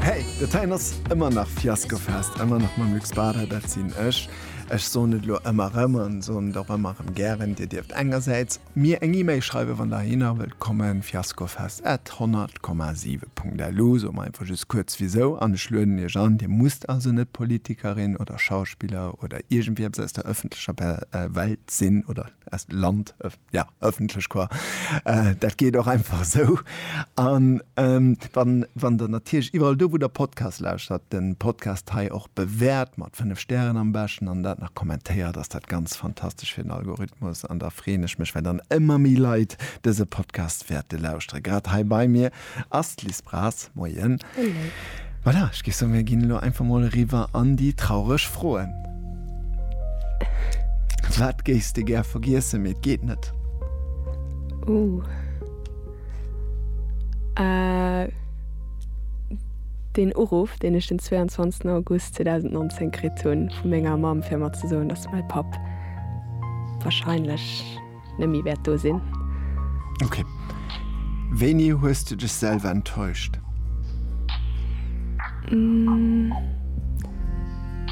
Hey, dat heien ass ëmmer nach Fiaskofest, ëmmer nach mam Luc Spada, dat sinn ech. Ech soen et elo ëmmer erëm an soen et och ëmmer erëm gären, Dir dierft engersäits mir eng E-Mail schreiwen, wann Der heihinner wëllt kommen, fiaskofest at 100, 7 Punkt LU. Soe mer einfach just kuerz wisou an ech lueden Iech an. Dir musst also net Politikerin oder Schauspiller oder iergendwieps aus der ëffentlecher Welt sinn oder aus Land, Ja, ëffentlech Choir, dat geet och einfach esou. An wann Der natierlech iwwerall do, wou Der Podcasts lauschtert, de Podcast hei och bewäert, mat fënnef Stären am beschten, an dat nach kommentéiert, ass dat ganz fantastesch fir den Algorithmus. An da freeën ech mech, well dann ëmmer méi Leit dëse Podcast wäerte lauschteren, grad hei bei mir. Ass d'Liz Braz. Moien. Hallo. Voilà, ech géif soen, mir ginn elo einfach mol eriwwer an déi traureg Froen. Wat géifs de gär vergiessen, mee et geet net? Ouh. Äh, deen Uruff, deen ech den 22. August 2019 kritt hunn vu menger Mamm, fir mer ze soen, dass mäi Papp wahrscheinlech. net méi wäert do sinn. Ok. Wéini hues du dech selwer enttäuscht?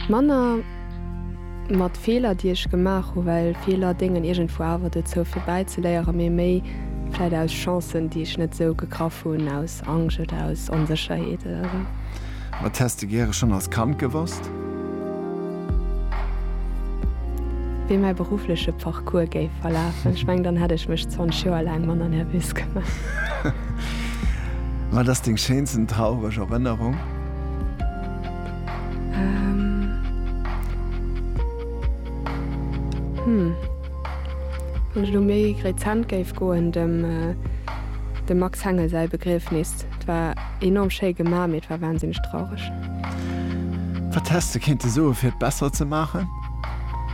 Manner mat Feeler, déi ech gemaach hunn, well Feeler déngen iergendwou awer dozou fir bäizeléieren, mee méi vläit aus Chancen, déi ech net esou gegraff hunn, aus Angscht oder aus Onsécherheet oder esou. Wat häss de gäre schonn als Kand gewosst? Wéi mäi beruffleche Parcours géif verlafen. Ech mengen, dann hätt ech mech 20 Joer laang manner nervös gemaach. Wat ass deng schéinsten traureg Erënnerung? Hm. Wann ech elo méi rezent géif goen, dem Max Hengel säi Begriefnis. Et war enorm schéi gemaach, mee et war wahnsinneg traureg. Wat häss de kéinte soe fir et besser ze maachen?